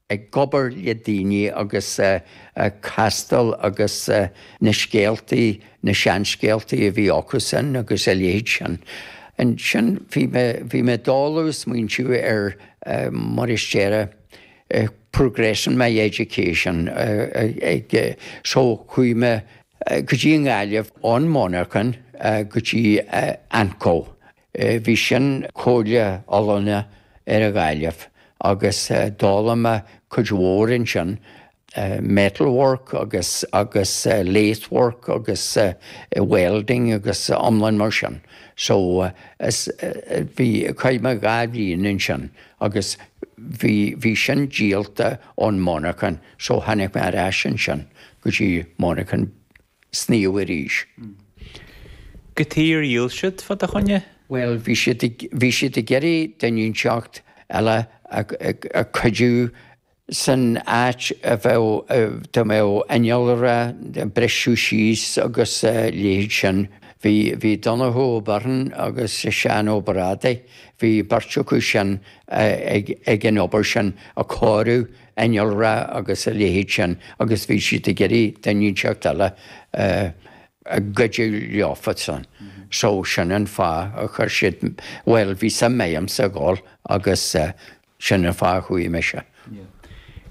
ag obair le daoine agus castáil agus na scéaltaí, na seanscéaltaí a bhí acusan agus a leithéid sin. Ansin bhí mé, bhí mé i dtólamh ag smaointiú ar mar a déarfá progressing my education ag, so chuaigh mé go dtí an nGaillimh, ón monarchan go dtí AnCO Bhí sin Comhairle Oiliúna ar an Ghaillimh agus d'fhoghlaim mé cuid mhór ansin, metalwork agus agus lathework agus welding agus iomlán mar sin. So bhí, chaith mé dhá bhliain ansin agus bhí bhí sin díolta ón monarchan so tháinig mé ar ais ansin go dtí an monarchan sníomh arís. Cad chuige ar dhíol siad fá do choinne. Bhuel, bhí siad ag iarraidh duine inteacht eile a chuidiú san áit a bheadh, dá mbeadh innealra ag briseadh síos agus a leithéid sin. Bhí Donnchadh Ó Beirn agus Seán Ó Brádaigh, bhí beirt acu sin ag an obair sin, ag cóiriú. innealra agus a leithéid sin agus bhí siad ag iarraidh duine inteacht eile a chuidiú leofasan. So sin an fáth a chuir siad, bhuel, bhí suim agamsa a dhul agus sin an fáth a chuaigh mise. Yeah.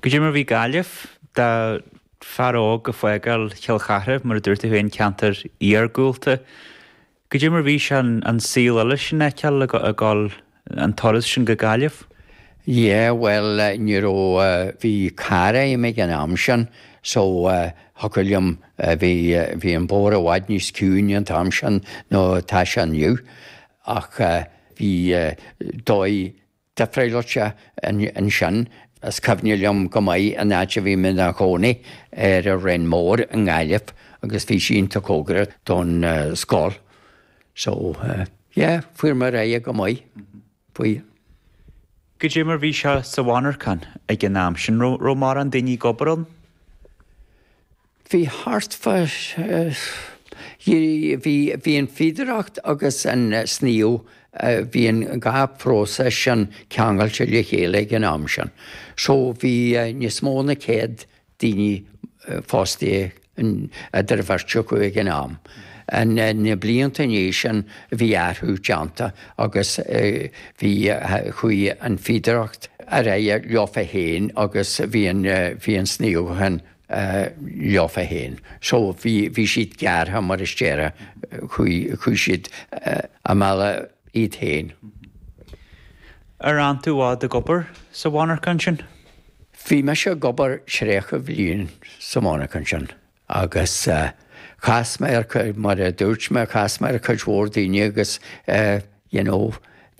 Cad é mar bhí Gaillimh do fear óg ag fágáil Chill Chartha, mar a dúirt tú féin, ceantar iargúlta. Cad é mar bhí sé an saol eile sin a fheiceáil ag gabháil an turas sin go Gaillimh. Yeah, bhuel, ní raibh, bhí carr a'm ag an am sin so thiocfadh liom, bhí, bhí an bóthar i bhfad níos ciúine an t-am sin nó atá sé inniu ach bhí dóigh, difreáilte ansin. Is cuimhne liom go maith an áit a bhí mé i mo chónaí, ar an Rinn Mhór i nGaillimh, agus bhí sí iontach cóngarach don scoil. So, yeah, fuair mé ar aghaidh go maith faoi. Cad é mar bhí sé sa mhonarchan ag an am sin, raibh mórán daoine ag obair ann? Bhí thart fá. Bhí bhí an fíodóireacht agus an sníomh, bhí an dhá phróiseas sin ceangailte le chéile ag an am sin. So bhí níos mó ná céad daoine fostaithe idir an bheirt acu ag an am. Na blianta i ndiaidh sin bhí athrú déanta agus bhí, chuaigh an fíodóireacht ar aghaidh leofa féin agus bhí an, bhí an sníomhachán leofa féin. So, bhí siad gearrtha mar a déarfá, chuaigh siad a mbealach iad féin. Ar fhan tú i bhfad ag obair sa mhonarcha ansin? Bhí mise ag obair tríocha bhliain sa mhonarcha ansin agus chas mé ar, mar a dúirt mé, chas mé ar chuid mhór daoine agus. you know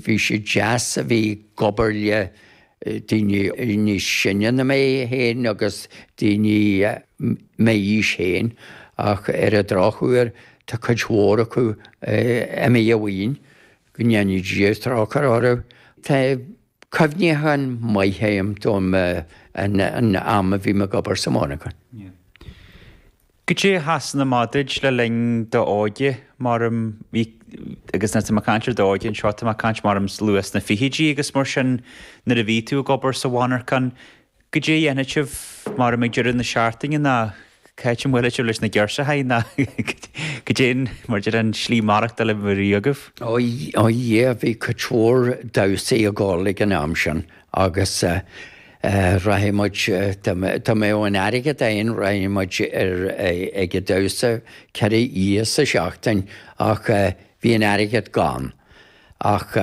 bhí sé deas a bheith ag obair le daoine níos sine ná mé féin agus daoine m'aois féin ach ar an drochuair tá cuid mhór acu imithe uainn, go ndéana Dia trócaire orthu. Tá cuimhneacháin maithe agam dom an am a bhí mé ag obair sa mhonarchan. Goidé a sheasann amach duit le linn d'óige, maram, bhí, agus nuair atá mé ag caint ar d'óige anseo, tá mé ag caint, maram, luath sna fichidí agus mar sin, nuair a bhí tú ag obair sa mhonarchan, goidé a dhéanfadh sibh, maram, ag deireadh na seachtaine ná cá háit a mbuailfeadh sibh leis na girseachaí ná goidé an, mar déarfá, an slí maireachtáil a bhí agaibh? Ó, yeah, bhí cuid mhór damhsaí ag gabháil ag an am sin agus. Rachadh muid, dá mbeadh an airgead againn, rachadh muid ar ag an damhsa ceithre oíche sa seachtain ach bhí an airgead gann. Ach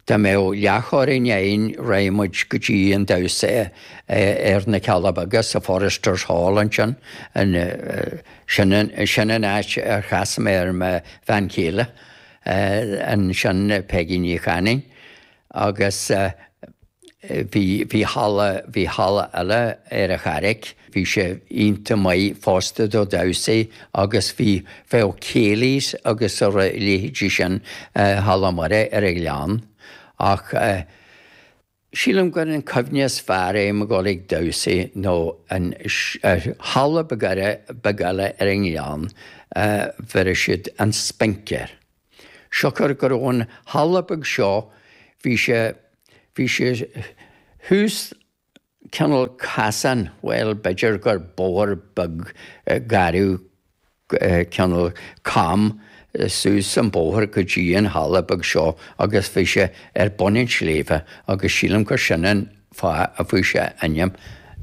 dá mbeadh leathchoróin fhéin rachadh muid go dtí an damhsa ar na Cealla Beaga sa Foresters Hall ansin, sin an áit ar chas mé ar mo bhean chéile ansin, Peigí Ní Chanainn. agus bhí halla, bhí halla eile ar an Charraig, bhí sé iontach maith fosta do damhsaí agus bhí bhí céilís agus a leithéidí sin Halla Muire ar an Ghleann ach sílim gur an cuimhne is fearr agam ag gabháil ag damhsaí nó an halla beag eile ar an Ghleann bheireadh siad an Spinc air. siocair go raibh an halla beag seo bhí sé, bhí sé thuas cineál casán, bhuel, b'fhéidir gur bóthar beag garbh cineál cam suas an bóthar go dtí an halla beag seo agus bhí sé ar bun an tsléibhe agus sílim gur sin an fáth a fuair sé ainm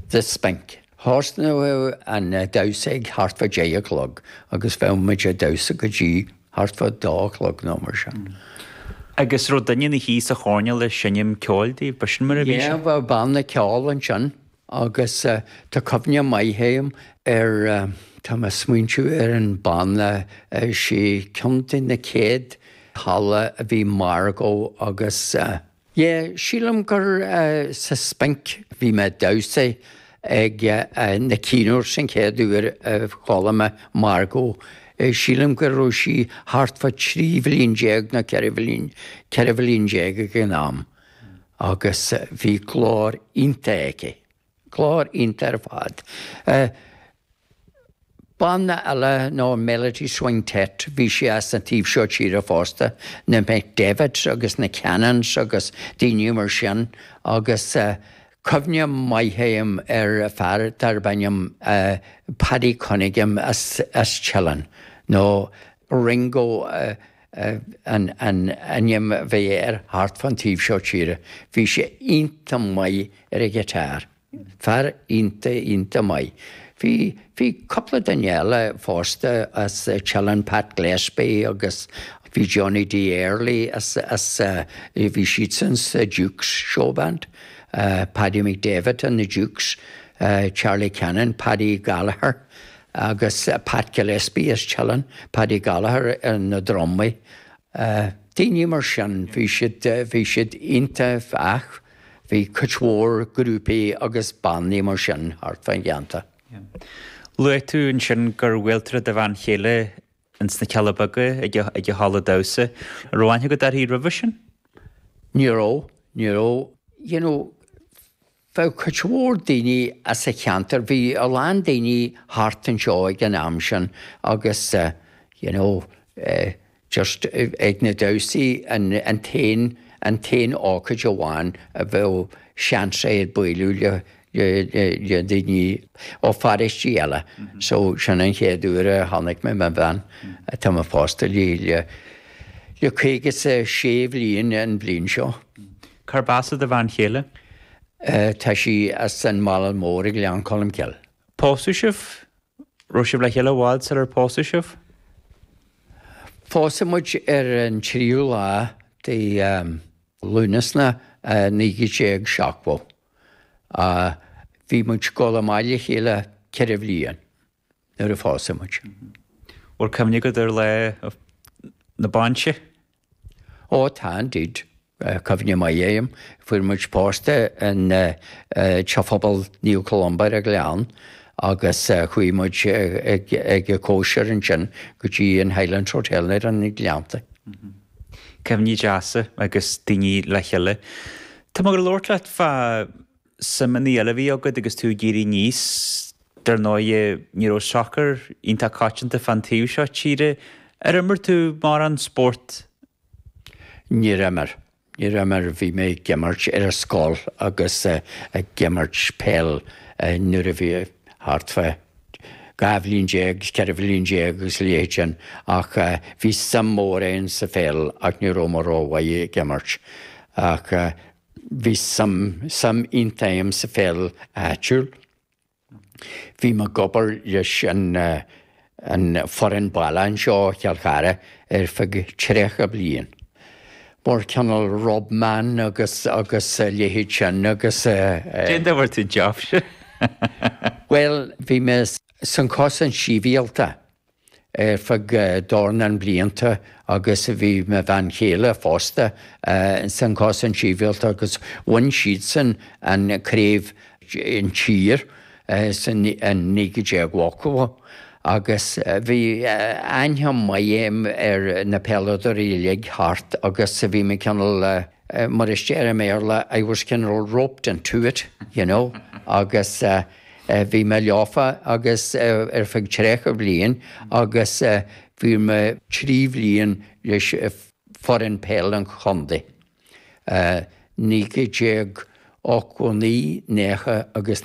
The Spinc. Thosnódh an damhsa ag thart fá deich a chlog agus bheadh muid a' damhsa go dtí thart fá dó a chlog nó mar sin. Agus raibh duine ina shuí sa choirnéal ag seinm ceoil daoibh, ba sin mar a bhí sé? Yeah, bheadh banna ceoil ansin agus tá cuimhne maith agam ar, tá mé ag smaointiú ar an banna, sí ceann de na chéad halla a bhí Margo agus. Ye, sílim gur sa Spinc bhí mé ag damhsaí ag na cinn úra sin chéad uair a chuala mé Margo, sílim go raibh sí thart fá thrí bhliain déag nó ceithre bhliain, ceithre bhliain déag ag an am agus bhí glór iontach aici. Glór iontach ar fad. Banna eile ná Melody Swing Tet, bhí siad as an taobh seo tíre fosta, na McDavitts agus na Cannons agus daoine mar sin agus cuimhne mhaith domh fhéin ar fear darb ainm Paddy Cunningham as Teileann nó Ringo an ainm a bhí air thart fán taobh seo tíre. Bhí sé iontach maith ar an ghiotár. Fear iontach, iontach maith. Bhí, bhí cúpla duine eile fosta as Teileann, Pat Gillespie agus bhí Johnny D. Early as, as, bhí siadsan sa Dukes Show Band, Paddy McDavitt and the Dukes, Charlie Cannon, Paddy Gallagher, agus Pat Gillespie as Teileann, Paddy Gallagher ar na drumaí, daoine mar sin, bhí siad, bhí siad iontach fosta bhí cuid mhór grúpaí agus bannaí mar sin thart fán cheantar. Luaigh tú ansin gur bhuail tú le do bhean chéile ins na Cealla Beaga ag, ag halla damhsa. An raibh aithne agat uirthi roimhe sin? Ní raibh, ní raibh, you know, bheadh cuid mhór daoine as an cheantar, bhí a lán daoine thart anseo ag an am sin agus you know just ag na damhsaí an an t-aon an t-aon ócáid amháin a bheadh seans agat bualadh le le daoine ó pharóistí eile so sin an chéad uair a chonaic mé mo bhean atá mé pósta léi le le caoga 's a sé bliain an bhliain seo. Cárb as do bhean chéile? Tá sí as Málainn Mhóir i nGleann Cholmcille. Phós sibh? Raibh sibh le chéile i bhfad sular pósadh sibh? Pósadh muid ar an tríú lá de Lúnasa 1970. Bhí muid ag goil amach le chéile ceithre bhliain. nuair a pósadh muid. Bhfuil cuimhne agat ar Lá na Bainse? Ó, tá, indeed. Cuimhne mhaith domh fhéin. Fuair muid pósta i dTeach Pobail Naomh Columba ar an Ghleann agus chuaigh muid ag an chóisir ansin go dtí an Highlands Hotel ar na Gleannta. Cuimhní deasa agus daoine le cheile. Tá mé ag labhairt leat fá suimeanna eile a bhí agat agus tú ag éirí aníos. Dar ndóighe, ní raibh sacar iontach coitianta fán taobh seo tíre. Ar imir tú mórán spórt? Níor imir. Níor imir. Bhí mé ag imirt ar an scoil agus ag imirt peil nuair a bhí thart fá dhá bhliain déag, cheithre bhliain déag agus a leithéid sin ach bhí suim mhór a'inn sa pheil ach ní raibh mé rómhaith ag imirt. Ach Bhí suim iontach agam sa pheil áitiúil. Bhí mé ag obair leis an foireann baile anseo Chill Chartha ar feadh tríocha bliain. Mar cineál rub man agus a leithéid sin agus eh. Cén dóigh a bhfuair tú an jab sin? Bhuel, bhí mé san Cosaint Sibhialta. ar feadh dornán blianta agus bhí mo bhean chéile fosta san Cosaint Sibhialta agus bhain siadsan an craobh sinsir sa 1980 agus bhí aithne mhaith agam ar na peileadóirí uilig thart agus bhí mé cineál, mar a deirtear i mBéarla, I was kinda roped into it, you know, agus. Bhí mé leofa agus ar feadh tríocha bhliain agus bhí mé trí bhliain leis foireann peil an chontae, 1989, 90 agus